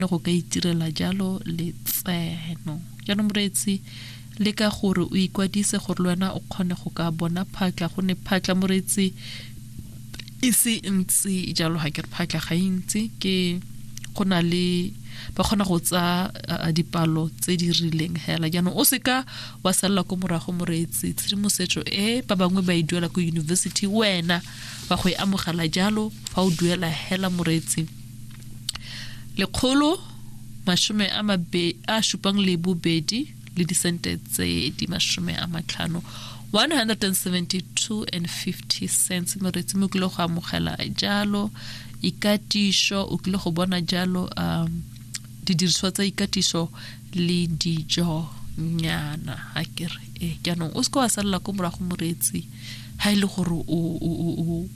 le go ka itirela jalo letseno jaanong moreetsi le ka gore o ikwadise gore le wena o kgone go ka bona phatla go ne phatla moreetsi e se ntsi jalo ga ke re phatla ga e ntsi ke go na le ba kgona go tsa dipalo tse di rileng hela jaanong o seka wa salela ko morago moreetsi tshedimosetso e ba bangwe ba e duela ko university wena ba go e amogela jalo fa o duela hela moreetsi lekgolo mashome a mabe a supang le bobedi le disente tse di mashome a matlhano 172 and 50 cents moretsi mo kile go amogela jalo ikatiso o kile go bona jalo um didiriswa tsa ikatiso le dijo nyana a kere e jaanong o se ka wa salela ko morago moreetsi ga e le gore o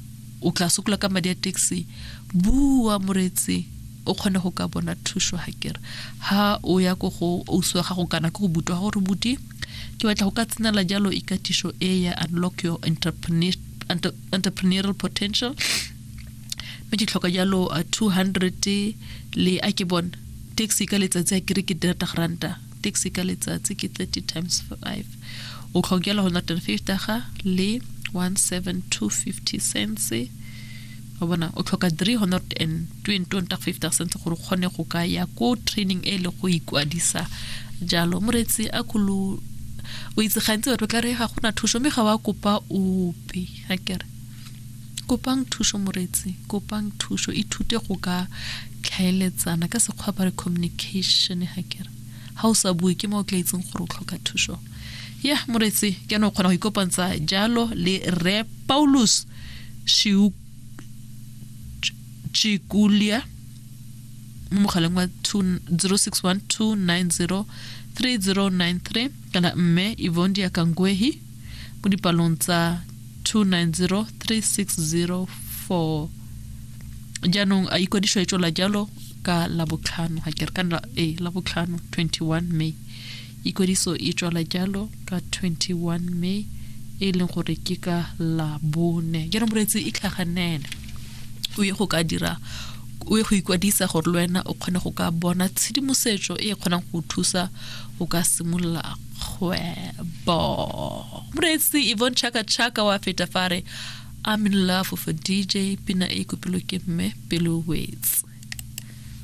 o tla sokola ka madi a taxi bua moretse o kgone go ka bona thuso ga kere ha o ya ko go ousi wa gago kana ko go butwa gore buti ke batla go ka tsenela jalo ikatiso e ya unlock your entrepreneurial potential mme ke tlhoka jalo 200 uh, le a ke bone taxi ka letsatsi a kere ke 300 ranta taxi ka letsatsi ke 30 times 5 o tlhokela 150 ga le 17250 cents wa bona o tlhoka 320 cents gore kgone go ka ya ko training e le go ikwadisa jalo moretsi a kholo o itse gantsi batho tla re ga gona thuso mme ga wa kopa ope ga kere Kopang thuso moreetsi, kopang thuso. Ithute go ka tlhaeletsana ka sekgwa ba re communication ha kere. Ha o sa bue ke mo o tla itseng gore o tlhoka thuso. Ya moreetsi ke ane o kgona go ikopantsa jalo le Rre Paulus Shiu Chikulia mo mogaleng wa 0612903093 kana mme Ivondia Kangwehi mo dipalong tsa 290360 jaanong a ikwadiso e tswela jalo ka labotlhano ga ke re ka e labotlhano 21 may ikwadiso e tswala jalo ka 21 may e leng gore ke ka labone jaanong moreetsi e tlhaganele o ye go ka dira o ye go ikwadisa gore le wena o kgone go ka bona tshedimosetso e kgonang go thusa go ka simolola kgwebo moreetsi evon chaka chaka wa feta fare i'm in love with a dj pina e kopilwe ke mme pelo wetse